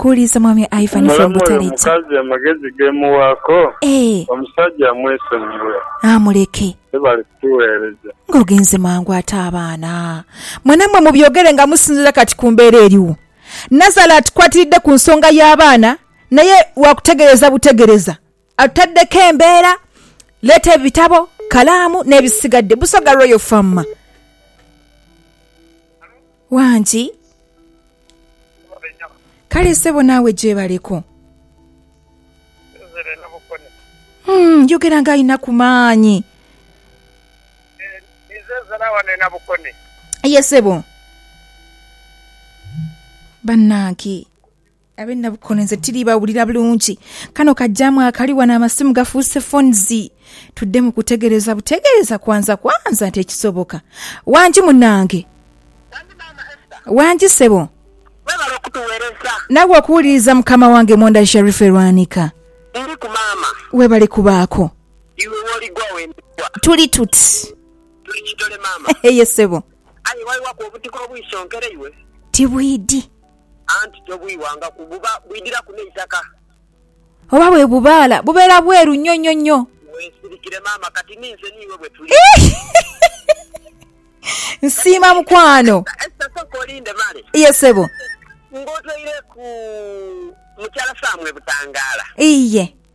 Kuuliza mwami Ivan from Muleme oyo Butaleta. mukazi amagezi gemuwaako Eeh. omusajja amwesonyiwe. Haa muleke. Webale kutuweereza. Nga ogenze mangu ate abaana. Mwe namwe mubyogere nga musinzira kati ku mbeera eriwo. Nazala atukwatiridde ku nsonga y'abaana naye wakutegereza butegereza. Atadeko embeera, Leeta ebitabo, kalaamu n'ebisigadde. Busoga Royal Farm. Wangi. Kale ssebo naawe gyebaleko. Hmm, yogera nga alina ku maanyi. Ye ssebo. Bannange. Abe Nabukone nze tili bawulira bulungi. Kano kajaamu akali wano amasimu gafuuse phones. Tudde mu kutegereza butegereza kwanza kwanza nti ekisoboka. Wangi munange. Wangi maama Esther. Wangi sebo. Webale okutuwereza. Nawe okuwuliriza mukama wange Mwonda Sharifah e Lwanika. Ndiriku maama. Webale kubaako. Iwe woligwa wendigwa. Tuli tuti. Tuli kitole maama. Eye sebo. Aye waiwaku obutiko obwisonkere iwe. Tibwidi. anti tobwiwanga ku buba bwidhiraku n'eitaka. Oba bwe bubaala bubeera bweru nnyo nnyo nnyo. Weesirikire maama kati ni nze n'iwe bwe tuli. Nsiima mukwano. Esther sooka olinde male. Ye ssebo. Ng'otoireku mukyala Sam e Butangaala. Iye.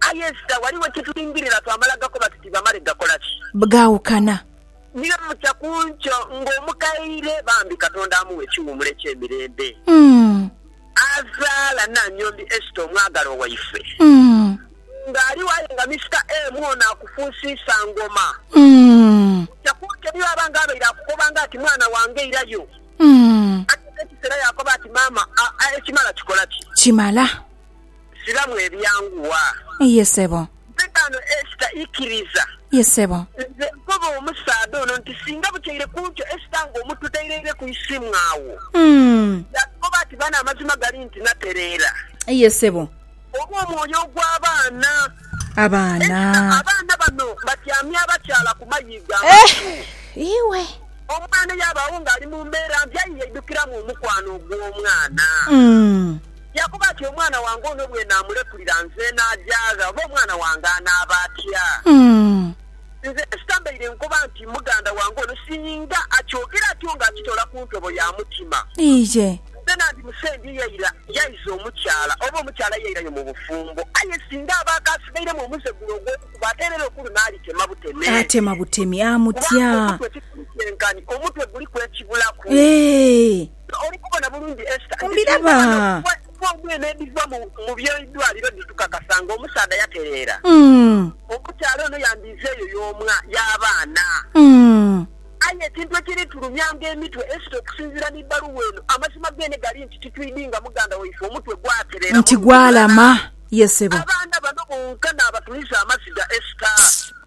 Aye Esita, ghaligho kye tulingirira twamala gakoba tuti bamale gakola ki? Bgaawukana. Ni bye mutya ku nkyo ng'omukaire, bambi Katonda amughe ekiwummulo eky'emirembe. Mm. Azaala Nannyombi Esita omwagalwa waife. Mm. Ng'aligho aye nga Misita emu ono akufuusiisa ngoma. Mm. Mutya ku nkyo ni bw'aba ng'abaire akukoba nga ati mwana wange irayo. Mm. Aye n'ekiseera yaakoba ati maama, a, a, ekimala kikola ki? Kimala. Siramu ebyangu waa. Ye sebo. Mpegano Esta ikiriza. Ye sebo. Nze nkoba omusaadha ono nti singa butyaire kuntyo Esta nga omu tutereire ku isimu agho. Yatukoba ati bano amazima gali nti natereera. Ye sebo. Oba omwoyo ogwa baana. Abaana. Esta abaana bano batyamye abakyala ku mayiigo amatu. Iwe. Omwana yabaagho nga ali mu mbeera mbi aye yaidukiramu omukwano ogw'omwana. Yaakoba ati, Omwana wange ono bwe naamulekulira nze naajaagha, oba omwana wange anaaba atya? Nze sitambaire nkoba nti muganda wange ono. Singa akyogera atyo nga akitola ku ntobo ya mutima, nze nandimusembye yaira yaiza omukyala, oba omukyala yairayo mu bufumbo. Aye singa aba akaasigairemu omuze gule ogw'okukuba, ate era ero ku luno alitema buteme, kubanga omutwe tikuli kyenkanhi, omutwe guliku ekibulaku. Oli kubona bulungi Esther nti endhwaano edhigwa omu eno edhiva mu by'eidwaliro dhitukakasa nga omusaadha yatereera omukyala ono yandiize eyo y'omwa y'abaana. Aye ekintu ekiritulumyanga emitwe Esther okusinziira mu bbaluwa eno, amazima geene gali nti titwidhi nga muganda waife omutwe gwatereera muntu mulala. Abaana bano bonka n'abatuliza amaziga Esther.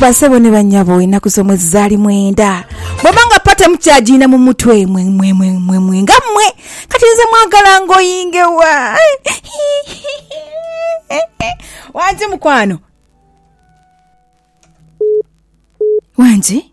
Basebo ne banyabo enaku z'omwezi zaali mwenda bwaba nga pate mukyagiina mu mutwe mwe mwe mwe mwe mwe nga mmwe kati nze mwagala ngoyinge wa wangi mukwano wangi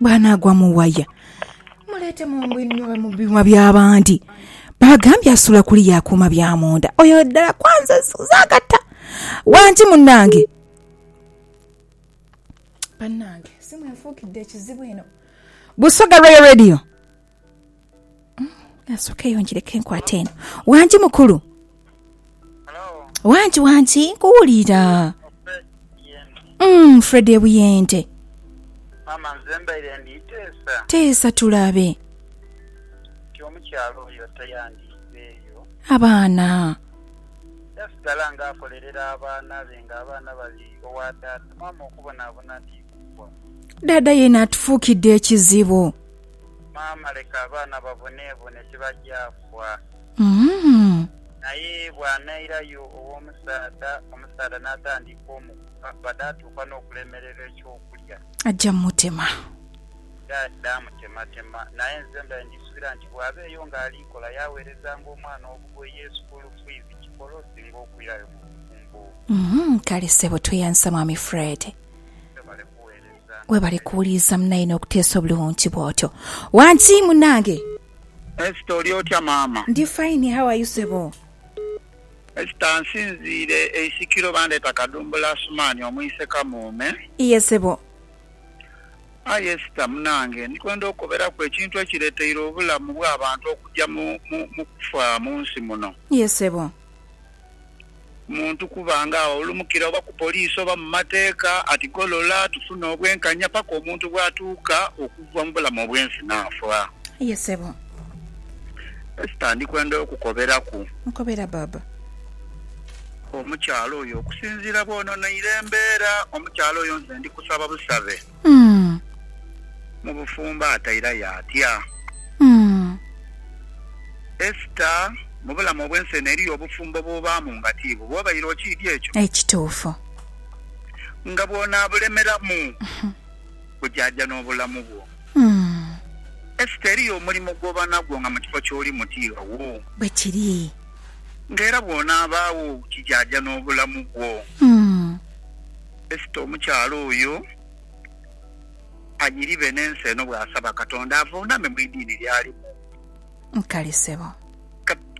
bwanaagwa mu waya muleete mu mbu inhwe mu biwa by'abandi baagambye asula kuli yakuuma bya munda oyo ddala kwanza zagata wangi munange banange simu enfuukidde ekizibu eno busoga royal radio Asokeyo njireke nkwate eno. Wangi mukulu. Wangi wangi nkuwulira. Mm, Fred ebuyende. Mama nze mbaire nditeesa Teesa tulabe. nti omukyala oyo tayandiizeeyo Abaana. yasigala nga akolerera abaana be nga abaana bali owa taata mama okubonabona nti kugwa Dada yena atufuukidde ekizibu. Maama leka abaana baboneebone tibaja fwa. Naye bw'anairayo ow'omusaadha, omusaadha n'atandika omukuba bade atuuka n'okulemererwa eky'okulya. Aja mutema. Dha mutematema. Naye nze mbade ndisuubira nti bw'aba eyo ng'ali kola yaaweerezanga omwana obugoye, sukuulu fiizi, kikola osinga okwirayo mu bufumbo. Kale ssebo tweyansa Mwami Fred. Webale kuweereza. Webale kuwuliriza munaye nokuteesa obulungi bwotyo wangi munange. Esther oli otya maama. Ndi fine how are you sebo. Esther nsinziire e isikiro bandeeta kadumbula Asuman omwise kamuume. Iye sebo. Aye Esther munange ndikwenda okukoberaku ekintu ekireteire obulamu bwabantu okujja mu kufa munsi muno. Iye sebo. muntu kuba nga awulumukira oba ku poliisi oba mu mateeka ati golola tufune obwenkanya paka omuntu bwatuuka okuva mu bulamu obwensi naafa. Aye sebo. Esther ndikwenda okukoberaku. Nkobera baaba. Omukyala oyo okusinziira bwononeire embeera, omukyala oyo nze ndikusaba busabe. Umm. Mu bufumbo atairayo atya? Umm. Esther, Mu bulamu obw'ensi eno eriyo obufumbo bw'obaamu nga ti bubwo. Obaire okiidhi ekyo? Ekituufu. Nga bw'onaabulemeramu, bujaaja n'obulamu bwo. Umm. Esther, Eriyo omulimo gw'oba nagwo nga mu kifo ky'olimu ti ghawo. Bwe kiri. Nga era bw'onaabaagho, kijaaja n'obulamu bwo. Umm. Esita omukyala oyo anyiribe n'ensi eno bw'asaba Katonda avuuname mu idiini ly'alimu. Nkali sebo.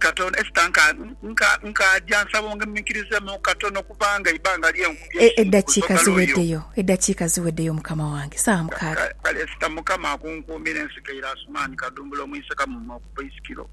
Katonda, Esita nka, nka, nkaaja nsaba onguminkirizeemu katono kubanga eibanga lye nkubye E, eisubi ku eddakiika sogalo yo. ziweddeyo, eddakiika ziweddeyo, Mukama wange. Saawa Ka, ka, mukaaga. kale, Esita, Mukama akunkuumire, nsikaire Asumani Kadumbula omu Isekamu mu Mowaabu, Baisikiro.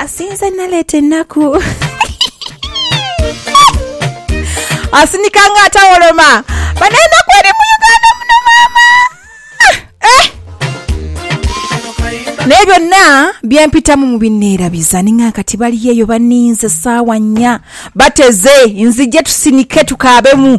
asinze naleeta ennaku asinika nga atawoloma bana enaku eri mu uganda muno maama eh! naye byonna byempitamu mubineerabiza ninga kati bali eyo baninze saawa nnya bateze nzije tusinike tukaabemu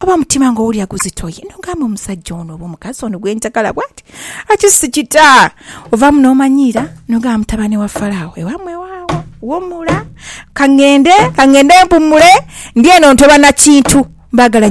Oba omutima nga owulira guzitoye n'ogamba omusajja ono oba omukazi ono gwe njagala bwati ati sikita. Ovaamu n'omanyiira n'ogamba mutabane wa Faraawo ewammwe waagho, wumula ka ngende, ka ngende mpummule, ndi eno ntoba na kintu, mbaagala.